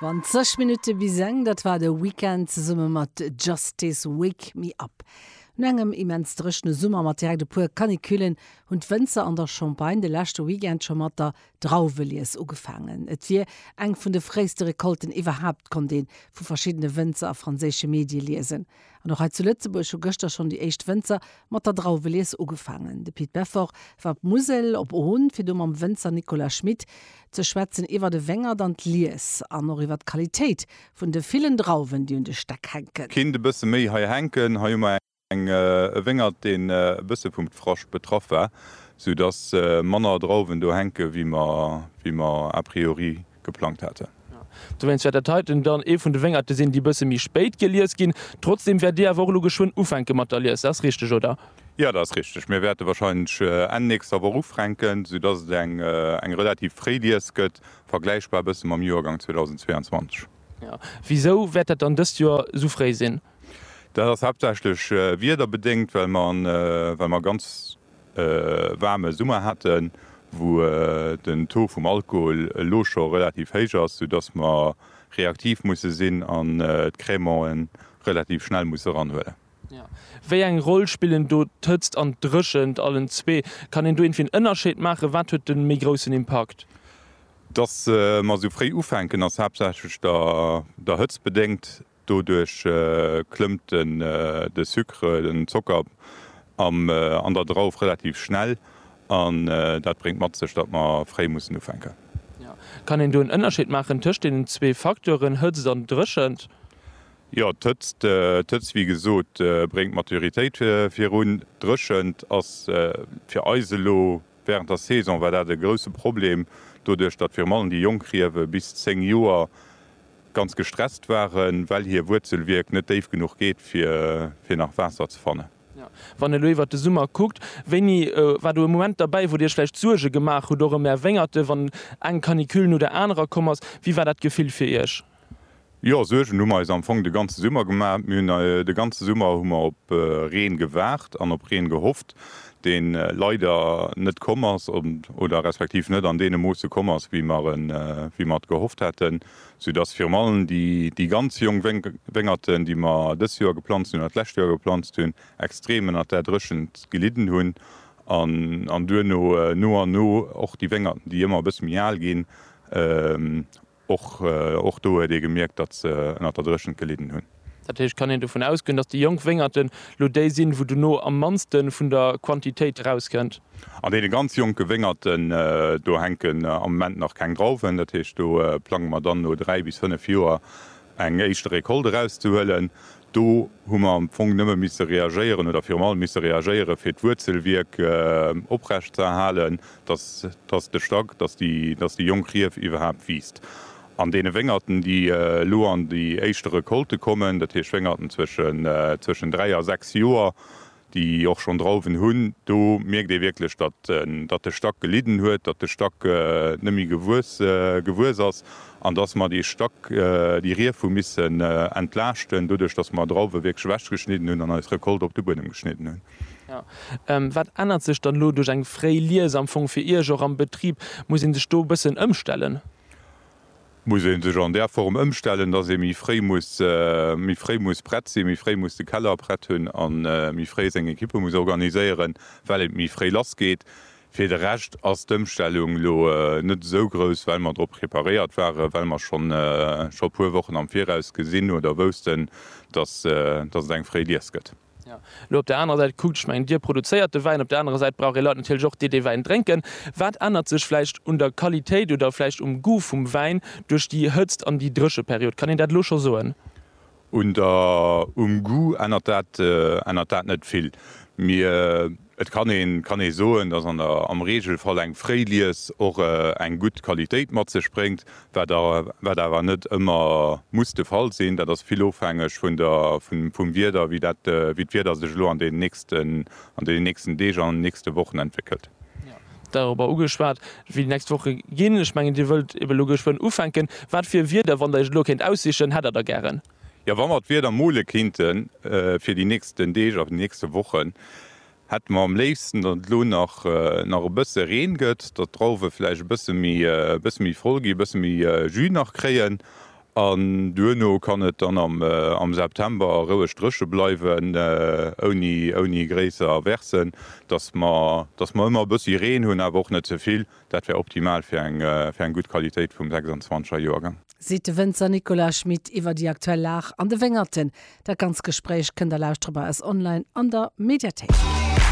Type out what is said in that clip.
20 Minutte bis eng, dat war de Weekend zesumme mat Justice, Wake Me Up. No engem immens dréchne Summer mat direkt e puer Canicullen hunn d'Wënzer an der Champagne de leschte Weekend scho mat der Drauwelies ugefaangen. Et wier eng vun de fréiste Recolten iwwerhaapt, konnt ee vu verschiddene Wënzer a franséische Medie liesen. An och hei zu Lëtzebuerg hu gëschter schonn déi éischt Wënzer mat der Drauwelies ugefaangen. De Pit Beffort war op d'Musel, op Ohn, fir do mam Wënzer Nicolas Schmit ze schwätzen iwwert e Wéngert an d'Lies an och iwwert d'Qualitéit vun de villen Drauwen, déi un de Stäck hänken. Kinnt e bësse méi hei hänken. Hei hu mer e Wéngert, deen e bësse vum Dfrascht betraff war, sou dass manner Drauwen do hänke wéi mer a priori geplangt haten. Dowéinst wäert dat heiten dann ee vun de Wéngerte sinn, déi e bësse méi spéit gelies ginn. Trotzdeem wäert Dir awer och elo geschwënn ufänke mat der Lies, dat ass richteg, oder? Jo, dat ass richteg. Mir wäerte warscheinlech Enn nächster Woch ufränken, soudatt et eng relativ fréi Lies gëtt, vergläichbar e bësse mam Joergang 2022. Jo. Wisou wäert dat dann dëst Joer esou fréi sinn? Dat ass haaptsächlech wiederbedéngt, well mer, well mer ganz e waarme Summer haten, wou den Taux vum Alkohol elo scho relativ héich ass, sou dass mer reaktiv musse sinn an d'Crèmante relativ schnell musse eranhuelen. Wéi eng Roll spillen do d'Hëtzt an d'Dréchent? Allen zwee? Kann een do iergendwéi en Ënnerscheed maachen? Wat huet de méi groussen Impakt? Dass mer esou fréi ufänken, ass haaptsächlech der Hëtzt bedéngt. Doduerch klëmmt de Sucre, den Zocker, an der Drauf relativ schnell an dat bréngt mat sech, datt mer fréi mussen ufänken. Kann een do en Ënnerscheed maachen tëscht deenen zwee Facteuren, Hëtzt an Dréchent? Jo, d'Hëtzt, wéi gesot, bréngt d'Maturitéit virun. D'Dréchent ass fir eis elo wärend der Saison war dat e grousse Problem, doduerch datt virun allem déi jonk Riewe bis 10 Joer ganz gestresst waren, well hir Wuerzelwierk net déif genuch geet, fir nach Waasser ze fannen. Wann elo iwwert de Summer kuckt, wéini war do e Moment derbäi, wou Dir Iech vläicht Suerge gemaach hutt, och ëm Är Wéngerten, wann eng Canicule no der anerer komm ass? Wéi war dat Gefill fir Iech? Jo, Suergen hu mer eis am Fong de ganze Summer gemaach. Mir hunn de ganze Summer hu mer op Reen gewaart an op Reen gehofft. deen leider net komm ass oder respektiv net an deene Moosse komm ass, wéi mer et gehofft haten, soudass virun allem déi ganz jonk Wéngerten, déi mer dëst Joer geplanzt hunn oder d'lescht Joer geplanzt hunn, extrem ënnert där Dréchent gelidden hunn an duerno no an no och déi Wéngerten, déi ëmmer e bësse méi al ginn, Och do huet ee gemierkt, datt se ënner der Dréchent gelidden hunn. Dat heescht, kann een dovun ausgoen, datt déi jonk Wéngerten elo déi sinn, wou dono am mannste vun der Quantitéit erauskënnt? An deene ganz jonke Wéngerten, do hänken am Moment nach keng Drauwen. Dat heescht, do plange mer dann no dräi bis fënnef Joer eng éischte Recolte erauszehuelen. Do hu mer am Fong nëmme misse reagéieren oder virum allem misse reagéiere fir d'Wuerzelwierk oprecht ze erhalen, dass dass de Stack, dass déi dass déi jonk Rief iwwerhaapt wiisst. An deene Wéngerten, déi elo an déi éischte Recolte kommen, dat heescht Wéngerten zwëschen zwëschen dräi a sechs Joer, déi och schonn Drauwen hunn, do mierkt ee wierklech, datt de Stack gelidden huet, datt de Stack net méi gewuess ass an datt mer dee Stack, déi Rief hu missen entlaaschten, doduerch datt mer Drauwe wierklech ewechgeschnidden hunn an eis Recolte op de Buedem geschnidden hunn. Wat ännert sech dann elo duerch eng fréi Lies am Fong fir Iech och am Betrib? Muss ee sech do e bëssen ëmstellen? muss ee sech an där Form ëmstellen, dass ee méi fréi muss méi fréi muss prett sinn, méi fréi muss de Keller prett hunn a méi fréi seng Equippe muss organiséieren, well et méi fréi lassgeet. Fir de Rescht ass d'Ëmstellung elo net esou grouss, well mer drop preparéiert waren, well mer schonn e puer Wochen am Viraus gesinn oder woussten, dass et eng fréi Lies gëtt. Lo op der anerer Säit kuckt, ech mengen, Dir produzéiert de Wäin, op der anerer Säit brauch ee Leit natierlech och, déi dee Wäin drénken. Wat ännert sech vläicht un der Qualitéit oder vläicht um Goût vum Wäin duerch déi Hëtzt an déi Drécheperiod? Kann een dat elo scho soen? Um Goût ännert dat net vill. Et kann een kann ee soen, dass an der am Regelfall eng fréi Lies och eng gutt Qualitéit mat sech bréngt, wat a wat awer net ëmmer muss de Fall sinn. Dat ass vill ofhängeg vun der vun vum Wieder, wéi dat wéi d'Wieder sech elo an deenen nächsten an deenen nächsten Deeg an nächste Wochen entwéckelt. Dorobber ugeschwat, wéi déi nächst Woche ginn. Ech mengen, Dir wëllt ebe elo geschwënn ufänken. Wat fir Wieder, wann Der Iech elo kéint aussichen, hätt Der da gären? Jo, wa mer d'Wieder mole kinnten fir déi nächsten Deeg a nächste Wochen, hätte mer am léifsten, datt et elo nach nach e bësse Reen gëtt, datt d'Drauwe vläicht e bësse méi e bësse méi voll ginn, e bësse méi Jus nach kréien an duerno kann et dann am am September roueg dréche bleiwen ouni ouni gréisser Aversen, datt mer datt mer ëmmer e bëssi Reen hunn, awer och net ze vill. Dat wär optimal fir eng fir eng gutt Qualitéit vum 26er Joergang. seet de Wënzer Nicolas Schmit iwwer déi aktuell Lag an de Wéngerten. Dat ganz Gespréich kënnt a lauschtrebar ass online an der Mediathéik.